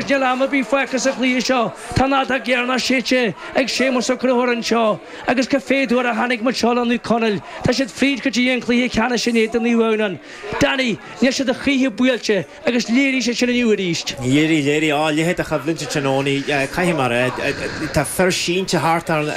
Níl am ar bith fágtha sa chluiche seo. Tá an fheadóg dheireanach séidte ag Séamus Ó Conchubhair anseo, agus cibé cá huair a tháinig muid suas le Naomh Conaill, tá siad fríd go dtí an cluiche ceannais in éadan Naomh Adhamhnáin. Danny, níl siad a choíche buailte, agus léirigh siad sin inniu arís. Léirigh, léirigh. Á, a leithéid de choimhlint i dtráthnóna, caithfidh mé a rá. Tá fir sínte thart ann,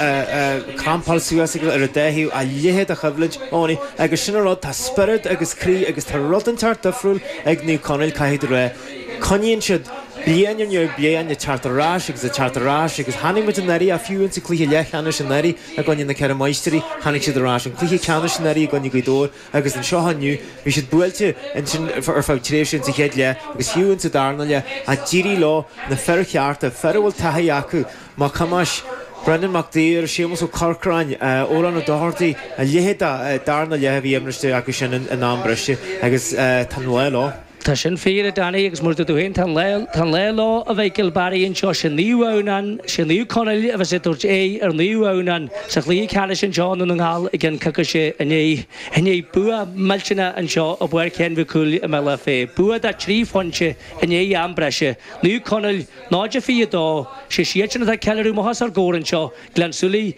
crampáilte suas acu ar an dá thaobh, a leithéid de choimhlint. Owenie, agus sin an rud, tá spiorad agus croí agus tá rud inteacht difriúil ag Naomh Conaill, caithfidh mé a rá. Coinníonn siad, bliain ar ndiaidh bliain, ag teacht ar ais agus ag teacht ar ais agus chonaic muid anuraidh, á, fiú insa gcluiche leathcheannais anuraidh i gcoinne na Ceithre Máistrí, tháinig siad ar ais, an cluiche ceannais anuraidh i gcoinne Ghaoth Dobhair agus anseo inniu. Bhí siad buailte ansin ar feadh tréimhse insa chéad leath agus fiú insa darna leath ach d'éirigh leo na fir chearta, fir a bhfuil taithí acu, Mac Thomáis, Brendan Mac Daidhir, Séamus Ó Corcráin, Odhrán Ó Dochartaigh, a leithéid de darna leath a bhí i measc acu sin in am breise agus tá an lá leo. Tá sin fíor, a Danny, agus mar a dúirt tú féin tá an lá leo, a bhuí le cúl Barry anseo, sé Naomh Adhamhnáin, sé Naomh Conaill a bheas ag tabhairt aghaidh ar Naomh Adhamhnáin sa chluiche ceannais anseo i nDún na nGall i gceann coicíse i ndiaidh bua millteanach anseo i bPáirc Sheáin Mhic Cumhaill i mBealach Féich, bua de trí phointe i ndiaidh am breise. Naomh Conaill 0-22 siadsan atá ag ceiliúradh amuigh os ár gcomhair anseo, Gleann tSúilí,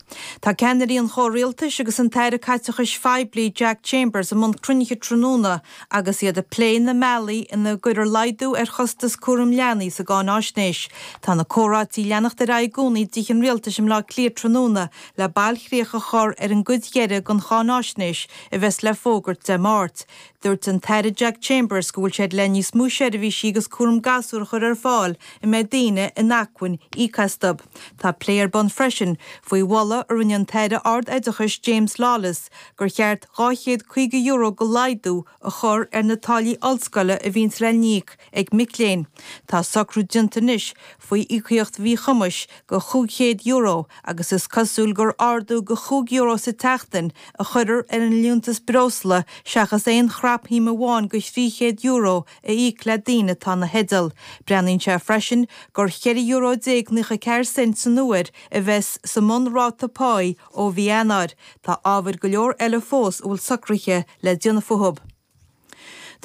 Tá ceannairí an chomhrialtais agus an tAire Caiteachais Phoiblí Jack Chambers i mbun cruinnithe tráthnóna agus iad ag plé na mbealaí ina gcuirfear laghdú ar chostas cúraim leanaí sa gcáináisnéis. Tá na comhráití ag leanacht ar aghaidh i gcónaí i dTithe an Rialtais i mBleá Cliath tráthnóna le bailchríoch a chur ar an gcuid dheiridh den cháináisnéis a bheas le fógairt Dé Máirt. Dúirt an tAire Jack Chambers go bhfuil sé ag éirí níos mó seirbhísí agus cúram gasúr a chur ar fáil a mbeidh daoine in acmhainn íoc astu. Tá plé ar bun freisin faoi mholadh a rinne an tAire Ard-Oideachais James Lawless gur cheart €250 go laghdú a chur ar na táillí ollscoile a bhíonns le n-íoc ag mic léinn. Tá socrú déanta anois faoi íocaíocht mhíchumais de chúig chéad euro agus is cosúil gur ardú de chúig euro sa tseachtain a chuirfear ar an liúntas breosla seachas aon chrapshuim amháin de thrí chéad euro a íoc le daoine atá ina theideal. Breathnaíonn sé freisin gur ceithre euro déag naocha ceathair cent san uair a bheas sa mbun-ráta páí ó mhí Eanáir. Tá ábhair go leor eile fós a bhfuil socruithe le déanamh fúthu.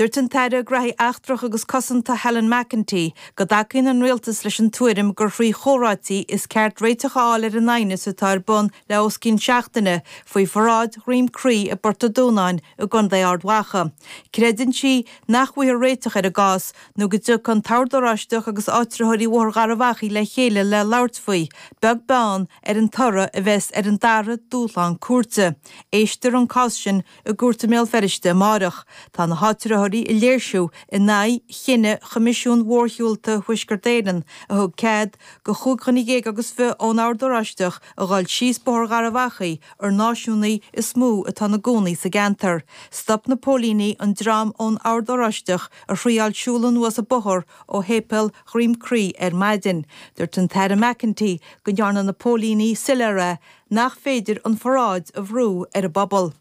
Dúirt an tAire Gnóthaí Eachtracha agus Cosanta Helen McEntee go dtacaíonn an Rialtas leis an tuairim gur thrí chomhráití is ceart réiteach a fháil ar an aighneas atá ar bun le os cionn seachtaine faoi pharáid Dhroim Chrí i bPort an Dúnáin i gContae Ard Mhacha. Creideann sí nach bhfaighfear réiteach ar an gcás nó go dtiocfaidh an tOrd Oráisteach agus áitritheoirí Bhóthar Gharbh Achaidh le chéile le labhairt faoi, beag beann ar an toradh a bheas ar an dara dúshlán cúirte. Éistfear an cás sin i gcúirt i mBéal Feirste amárach. Tá na háitritheoirí ag léirsiú in aghaidh chinneadh Choimisiún Mhórshiúlta Thuaisceart Éireann a thug cead do chúig dhuine dhéag agus fiche ón Ord Oráisteach a dhul síos Bóthar Gharbh Achaidh, ar náisiúnaithe is mó atá ina gcónaí sa gceantar. Stop na póilíní an dream ón Ord Oráisteach a thraíáil siúl anuas an bóthar ó Shéipéal Dhroim Crí ar maidin. Dúirt an tAire McEntee go ndearna na póilíní soiléir é. nach féidir an pharáid a bhrú ar an bpobal.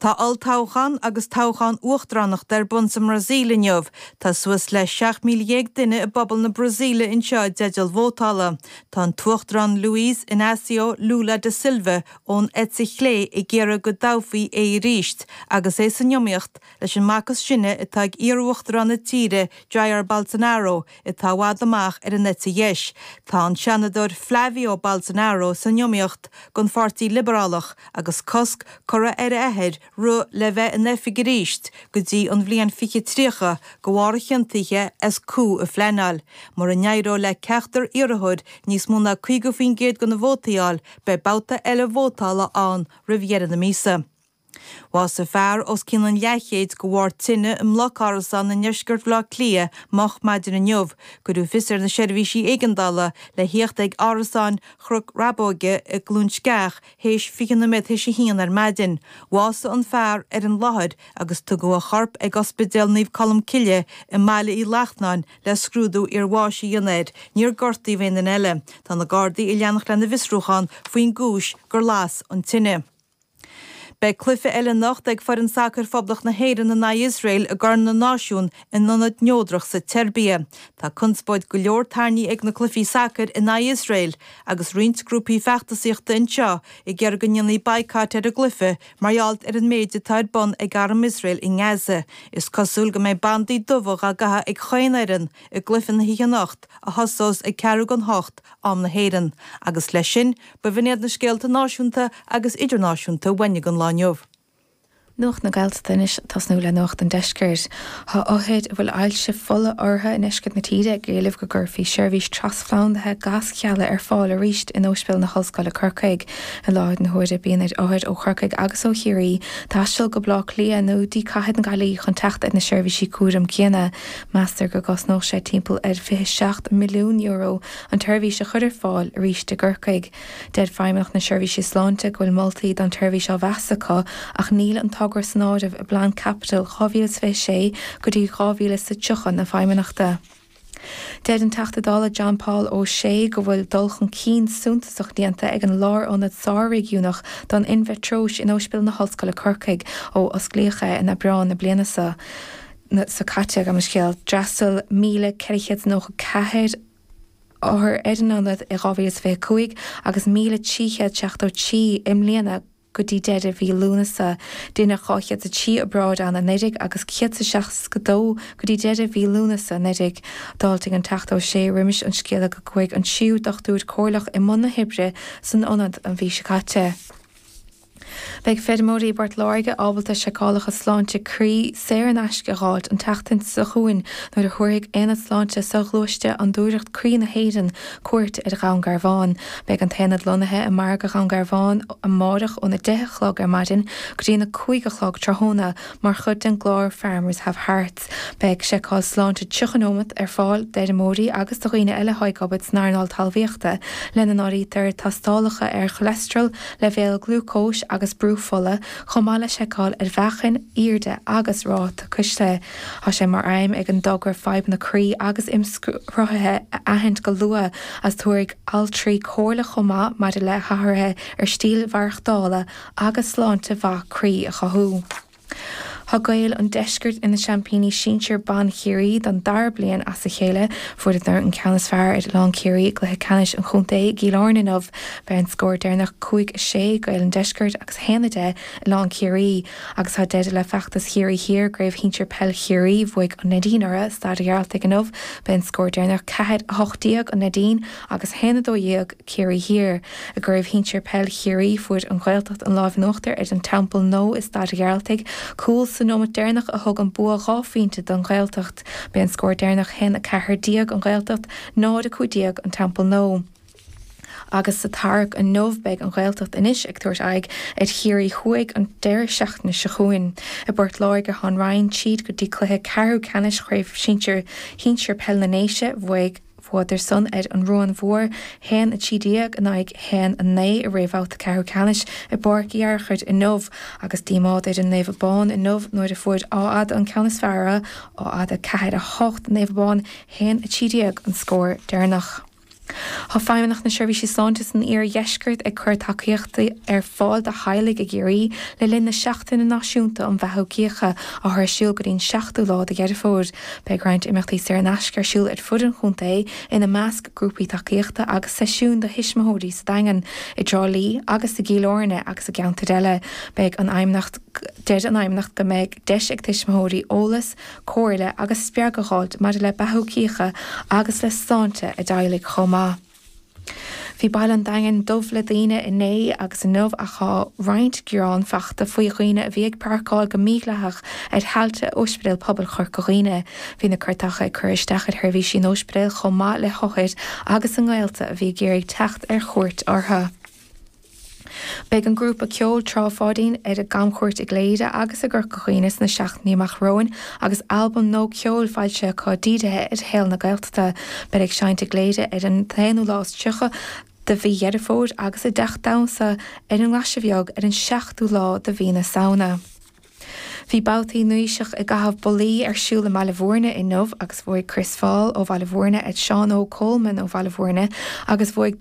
Tá olltoghchán agus toghchán uachtaránachta ar bun sa mBrasaíl inniu. Tá suas le 17,000 duine i bpobal na Brasaíle anseo i dteideal vótála. Tá an tUachtarán Luiz Inácio Lula da Silva ón eite chlé ag iarraidh go dtoghfaí é arís agus é san iomaíocht leis an mac is sine atá ag iar-uachtarán na tíre, Jair Bolsonaro, atá i bhfad amach ar an eite dheis. Tá an seanadóir Flávio Bolsonaro san iomaíocht don Pháirtí Liobarálach agus cosc curtha ar a athair rith le bheith in oifig arís go dtí an bhliain 2030 de bharr a chiontaithe as coup a phleanáil. Mura n-éireoidh le ceachtar iarrthóir níos mó ná 50% de na vótaí a fháil, beidh babhta eile vótála ann roimh dheireadh na míosa. Bhásaigh fear os cionn an leathchéid de bharr tine i mbloc árasán i ndeisceart Bhaile Átha Cliath moch maidin inniu. Cuireadh fios ar na seirbhísí éigeandála le tíocht ag árasáin Chnoc Rabóg i gCluain Sceach théis fiche noiméad théis a haon ar maidin. Bhásaigh an fear ar an láthair agus tugadh a chorp ag Ospidéal Naomh Colm Cille i mBaile Uí Lachnáin le scrúdú iarbháis a dhéanamh air. Níor gortaíodh aon duine eile. Tá na Gardaí ag leanacht lena bhfiosrúchán faoin gcúis gur las an tine. Beidh cluiche eile anocht ag foireann sacair Phoblacht na hÉireann in aghaidh Iosrael i gCorn na Náisiún in ionad neodrach sa tSeirbia. Tá conspóid go leor tarraingthe ag na cluichí sacair in aghaidh Iosrael agus roinnt grúpaí feachtasaíochta anseo ag iarraidh go ndéanfaí baghcat ar an gcluiche mar gheall ar an méid atá ar bun ag arm Iosrael i nGaza. Is cosúil go mbeidh bandaí dubha á gcaitheamh ag chaon fhoireann i gcluiche na hoíche anocht a thosós ag ceathrú go n-ocht, am na hÉireann, agus leis sin, B'in iad na scéalta náisiúnta agus idirnáisiúnta a bhain leis an lá inniu. Nuacht na Gaeltachta anois, ag tosnú le nuacht an deiscirt. Tá othair a bhfuil ailse fola orthu i ndeisceart na tíre ag éileamh go gcuirfí seirbhís trasphlandaithe gaschealla ar fáil arís in Óispidéal na hOllscoile, Corcaigh. I láthair na huaire bíonn ar othair ó Chorcaigh agus ó Chiarraí taisteal go Baile Átha Cliath nó go dtí Cathair na Gaillimhe chun teacht ar na seirbhísí cúraim céanna. Meastar go gcosnódh sé timpeall ar €27 milliún An tseirbhís a chur ar fáil arís i gCorcaigh. Deir Feidhmeannacht na Seirbhíse Sláinte go bhfuil moltaí don tseirbhís á mheas acu ach níl an togra san áireamh i bplean caipitil 2026 go dtí 2030 na Feidhmeannachta. Deir an Teachta Dála John Paul O'Shea go bhfuil dul chun cinn suntasach déanta ag an Lárionad Sár-Réigiúnach don Inmheatróis in Ospidéal na hOllscoile Corcaigh ó osclaíodh é in Aibreán na bliana seo caite. D'fhreastail 1,494. othar ar an ionad i 2025 agus 1,373 i mbliana go dtí deireadh mhí Lúnasa. Deineadh 203 obráid ann anuiridh agus 162 go dtí deireadh mhí Lúnasa anuiridh. D'fháiltigh an Teachta Ó Sé roimis an scéala go gcuaigh an tríú dochtúir comhairleach i mbun na hoibre san ionad an mhí seo caite. Beidh feirmeoirí i bPort Láirge ábalta seiceálacha sláinte croí saor in aisce a dh'fháilt an tseachtain seo chugainn nuair a thabharfaidh Aonad Sláinte Soghluaiste Fhondúireacht Croí na hÉireann cuairt ar Dhún Garbhán. Beidh an t-aonad lonnaithe i Margadh Dhún Garbhán amárach óna deich a chlog ar maidin go dtí na cúig a chlog tráthnóna mar chuid den gclár Farmers Have Hearts. Beidh seiceáil sláinte 30 nóiméad ar fáil d'fheirmeoirí agus do dhaoine eile atá ag obair san earnáil talmhaíochta, lena n-áirítear tástálacha ar cholesterol, leibhéal glúcóis agus brú fola, chomh maith le seiceáil ar mheáchan, airde agus ráta cuisle. Tá sé mar aidhm ag an dtogra fadhbanna croí agus imshruthaithe a aithint go luath agus tabharfaidh altraí comhairle chomh maith maidir le hathruithe ar stíl mhaireachtála agus sláinte mhaith croí a chothú. Tá Gaeil an Deiscirt ina seaimpíní sinsir ban Chiarraí don dara bliain as a chéile. Fuaireadar an ceann is fearr ar Oileán Ciarraí i gcluiche ceannais an chontae i gCill Airne inniu. B'é an scór deireanach cúig a sé, Gaeil an Deiscirt agus a haon a deich, Oileán Ciarraí. Agus tá deireadh le feachtas Chiarraí Thiar i gCraobh Shinsir Peil Chiarraí. Bhuaigh An Neidín orthu i Staid a' Ghearaltaigh inniu. B'é an scór deireanach ceathair a hocht déag, An Neidín agus a haon a dó dhéag. Ciarraí Thiar. I gCraobh Shinsir Peil Chiarraí, fuair An Ghaeltacht an lámh in uachtar ar An Teampall Nó i Staid a' Ghearaltaigh, cúl sa nóimeat deireanach a thug an bua dhá phointe don Ghaeltacht. B'é an scór deireanach 1, 14, An Ghaeltacht, 0, 15, An Teampall Nó, agus sa tarrac inniu beidh An Ghaeltacht anois ag tabhairt aghaidh ar Chiarraí Thuaidh an deireadh seachtaine seo chugainn. I bPort Láirge thá'n Rinn tríd go dtí cluiche ceathrú ceannais Chraobh Sinsir Shinsir Peil na nDéise. Bhuaidh. Bhuadar san ar an Ruán Mhór, 1, 13 in aghaidh 1, 9, i réamhbhabhta ceathrú ceannais i bPáirc Uí Fhearchair inniu agus díomá ar an Naomh Abán inniu nuair a fuair Áth Fhada an ceann is fearr orthu, Áth Fhada 4, 8, Naomh Abán 1, 13 an scór deireanach. Tá Feidhmeannacht na Seirbhíse Sláinte san iardheisceart ag cur tacaíochtaí ar fáil do theaghlaigh i gCiarraí le linn na Seachtaine Náisiúnta um Bheathú Cíocha atá ar siúl go dtí an 7ú lá de Dheireadh Fómhair. Beidh roinnt imeachtaí saor in aisce ar siúl ar fud an chontae, ina measc grúpaí tacaíochta agus seisiúin do thuismitheoirí sa Daingean, i dTrá Lí agus i gCill Áirne agus i gceantair eile. Beidh an aighneacht Deir an aighneacht go mbeidh deis ag tuismitheoirí eolas, comhairle agus spreagadh a fháilt maidir le beathú cíche agus le sláinte a dteaghlaigh chomh maith. Bhí Baile an Daingin dubh le daoine inné agus inniu ach tá roinnt gearán faighte faoi dhaoine a bhí ag páirceáil go mídhleathach ar thailte Ospidéal Pobail Chorca Dhuibhne. Bhí na cairteacha ag cur isteach ar sheirbhísí an ospidéil chomh maith le hothair agus a ngaolta a bhí ag iarraidh teacht ar chuairt orthu. Beidh an grúpa ceoil Trá Pháidín ar a gcamchuairt i gCléire agus i gCorca Dhuibhne sna seachtainí amach romhainn agus albam nua ceoil foilsithe acu dírithe ar shaol na Gaeltachta. Beid ag seinnt i gCléire ar an t-aonú lá is tríocha de mhí Dheireadh Fómhair agus i dTeacht Domhsa ar an nGlaise Bheag ar an seachtú lá de mhí na Samhna. Bhí babhtaí Nóíseach i gcaitheamh bollaí ar siúl i mBaile Mhúirne inniu agus bhuaigh Chris Faul ó Bhaile Mhúirne ar Sheán Óg Coleman ó Bhaile Mhúirne agus bhuaigh